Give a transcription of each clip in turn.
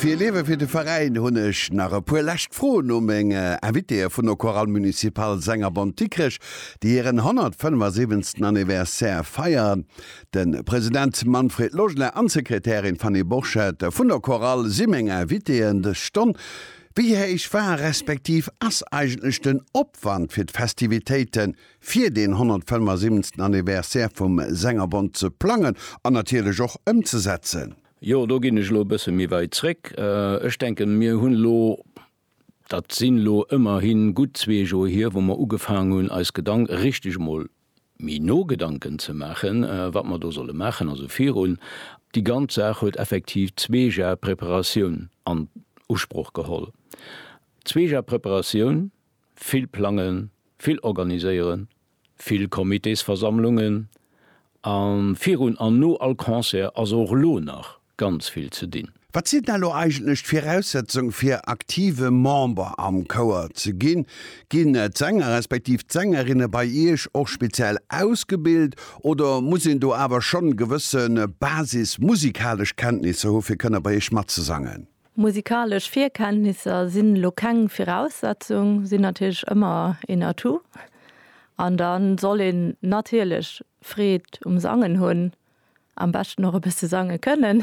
Fir Liewe fir de Veräin hunn ech nach e puer lescht Froen u meng Invitéë vun der Chorale Municipale Sängerbond Dikrech, déi hiren 175. Anniversaire feieren. De President Manfred Logeler an d'Sekretärin Fanny Borchert vun der Chorale si meng Invitéeën dës Stonn. Wéi héich war respektiv ass eigentlech den Opwand fir d'Festivitéiten fir deen 175. Anniversaire vum Sängerbond ze plangen an natierlech och ëmzesetzen. Jo, do ginn ech elo e bësse méi weit zréck. Ech denken, mir hunn elo, dat sinn elo ëmmerhi gutt zwee Joer hier, wou mer ugefaangen hunn, eis Gedank, richtig emol méi no Gedanken ze maachen, wat mer do solle maachen. Also virun, déi ganz Saach huet effektiv zwee Jahre Preparatioun an Usproch geholl, zwee Jahre Preparatioun. Vill plangen, vill organiséieren, vill Comitésversammlungen a virun an no all Concert ass och elo nach ganz vill ze dinn. Wat sinn dann elo eigentlech d'Viraussetzung fir aktive Member am Chouer ze ginn? Ginn d'Sänger respektiv d'Sängerinne bei Iech och speziell ausgebilt oder muss een do awer schonn gewësse basismusikalesch Kenntnisser hu fir kënne bei Iech matzesangen? Musikalesch Virkenntnisser sinn elo keng Viraussetzung, sinn natierlech ëmmer een Atout. An dann soll een natierlech Freed um Sangen hunn, am beschten och e bësse sange kënnen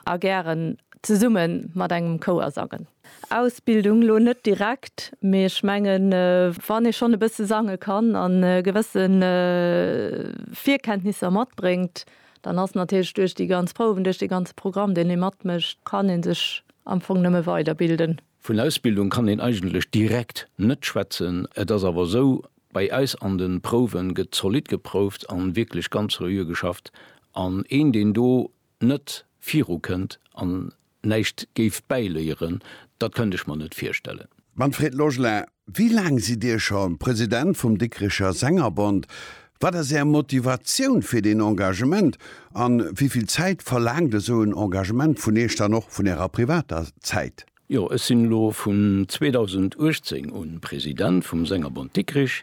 a gären zesumme mat engem Chouer sangen. Ausbildung elo net direkt, mee ech mengen, wann ee schonn e bësse sange kann an gewësse Virkenntnisser matbréngt, Dann ass natierlech duerch déi ganz Prouwen, duerch dee ganze Programm, deen ee matmécht, kann ee sech am Fong nëmme weiderbilden. Vun Ausbildung kann een eigentlech direkt net schwätzen. Et ass awer esou, bei eis an de Prouwe gëtt zolidd geprouft a wierklech ganz seriö geschafft. An een, deen do net virukënnt an Näischt géif bäiléieren, dat kënnt ech mer net virstellen. Manfred Logelin, Wéi laang sidd Dir scho President vum Dikricher Sängerbond? Wat ass Är Motivatioun fir deen Engagement? A wéivill Zäit verlaangt esou en Engagement vun Iech dann och vun Ärer privater Zäit? Jo, ech sinn elo vun 2018 un President vum Sängerbond Dikrich.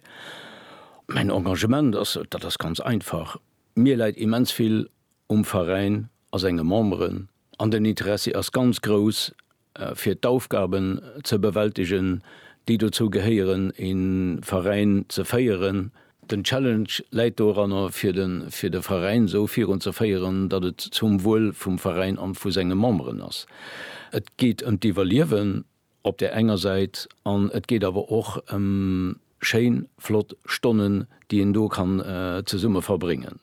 Mäin Engagement ass, dat ass ganz einfach, mir läit immens vill um Veräin a senge Memberen an den Interessi ass ganz grouss fir d'Aufgaben ze bewältegen, déi dozou gehéieren, e Veräin ze féieren. Den Challenge läit doranner, fir de Veräin esou virun ze féieren, datt et zum Wuel vum Veräin an vu senge Memberen ass. Et geet ëm d'Iwwerliewen. op där enger Säit, an et geet awer och ëm schéin, flott Stonnen, déi een do kann zesumme verbréngen.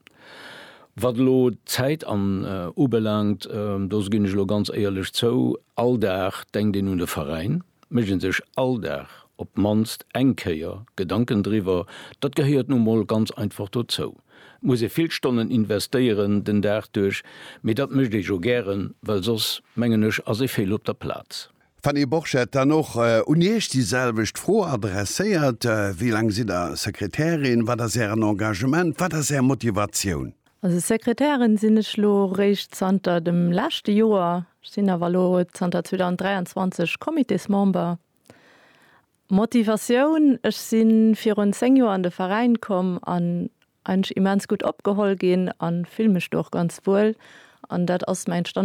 Wat elo d'Zäit an ubelaangt, do ginn ech elo ganz éierlech zou, all Dag denkt een un de Veräin, mécht ee sech all Dag op d'mannst eng Kéier Gedanken driwwer, dat gehéiert nu emol ganz einfach dozou. muss ee vill Stonnen investéieren den Dag duerch, mee dat mécht ee jo gären, well soss, mengen ech, ass ee fehl op der Plaz. Fanny Borchert, Dann och un Iech déi selwecht Fro adresséiert, wéi laang sidd Der Sekretärin? Wat ass Ären Engagement? Wat ass Är Motivatioun? Also Sekretärin sinn ech elo réischt zanter dem leschte Joer. Ech sinn awer elo zanter 2023 Comitésmember Motivatioun, Ech si virun 10 Joer an de Veräin komm an eigentlech immens gutt opgeholl ginn a fill mech do och ganz wuel. An dat ass mengt dann